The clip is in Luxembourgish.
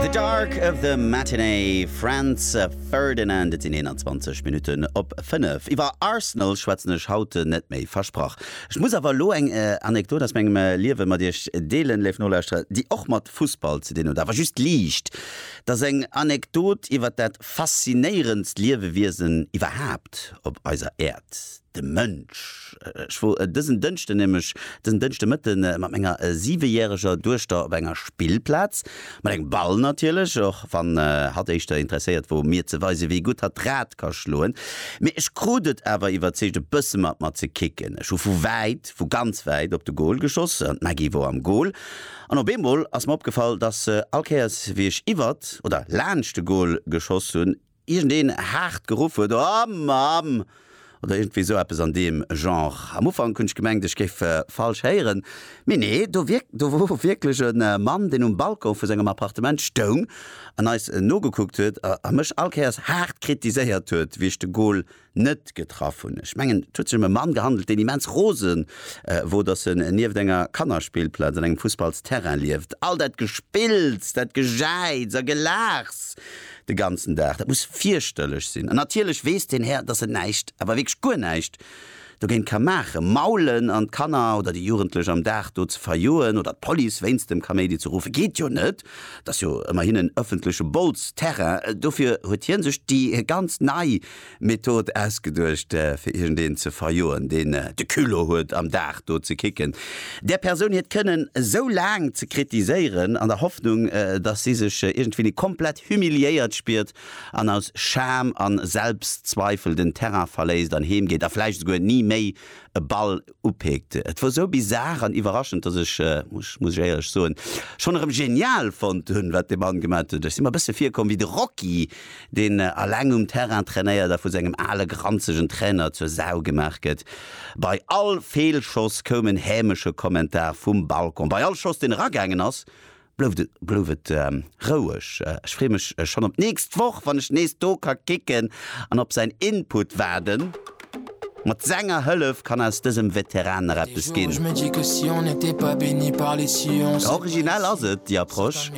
The Dark of the Matinee, Franz Ferdinand. Et sinn 21 Minutten op 5. Iwwer Arsenal schwätzen ech haut net méi, versprach. Ech muss awer elo eng Anekdot aus mengem Liewe mat iech deelen, léif Nolauschterer, déi och mat Fussball ze dinn huet, awer just liicht. Et ass eng Anekdot iwwer dat faszinéierendst Liewewiesen iwwerhaapt op eiser Äerd, De Mënsch. Ech wor dësen Dënschden nämlech dësen Dënschde Mëtte mat menger siwejäreger Duechter op enger Spillplaz. Mat engem Ball natierlech, och wann hatt éischter interesséiert wor mir ze weise wéi gutt hatt d'Rad ka schloen. Mee ech krut et awer iwwerzeegt e bësse mat mer ze kicken. Ech hu vu wäit, vu ganz wäit op de Goal geschoss an d'Maggy wor am Goal. An op eemol ass mer opgefall, dass se all Kéiers wéi ech iwwert oder laanscht de Goal geschoss hunn, iergendeen haart geruff huet, O Mamm! oder iergendwéi esou eppes an deem Genre. Am Ufank hunn ech gemengt, ech géif falsch héieren, mee nee, do wierk, do wor wierklech e Mann, deen um Balcon vu sengem Appartement stoung an eis nogekuckt huet a mech all Kéiers haart kritiséiert huet, wéi ech de Goal net getraff hunn. Ech mengen, et huet sech ëm e Mann gehandelt, deen immens rose wor, datt en nieft enger Kannerspillplaz an engem Fussballsterrain lieft. All dat Gespills, dat Gejäiz a Gelaachs de ganzen Dag, dat muss fierchterlech sinn. An natierlech weess deen Här, datt en näischt, awer wierklech guer näischt dogéint ka maachen. Maulen an d'Kanner oder déi Jugendlech am Dag do ze verjoen oder d'Police wéinst dem Kaméidi ze ruffen, geet jo net. Et ass jo ëmmerhin en ëffentleche Bols-Terrain. Dofir huet hie sech déi ganz nei Method ausgeduecht fir iergendeen ze verjoen deen de Culot huet am Dag do ze kicken, där Persoun hiert Kënnen esou laang ze kritiséieren an der Hoffnung dass si sech iergendwéini komplett humiliéiert spiert an aus Scham an Selbstzweifel den Terrain verléisst an heem geet a vläicht esouguer ni méi e Ball upeekt. Et wor sou bizarre an iwwerraschend, dass ech, muss ech éierlech soen, schonn erëm genial fonnt hunn, wat dee Mann gemat huet. Ech si mer e bësse virkomm wéi de Rocky, deen aleng um Terrain trainéiert a vu sengem ale granzegen Trainer zur Sau gemaach gëtt. Bei all Feelschoss koum en hämesche Kommentar vum Balcon. Bei all Schoss, deen eragaangen ass, Blouf et roueg, ech free mech schon op nächst Woch wann ech nees do ka kicken an op säin Input waarden. Mat senger Hëllef kann aus dësem Veteran nach eppes ginn. Originell ass et, déi Approche.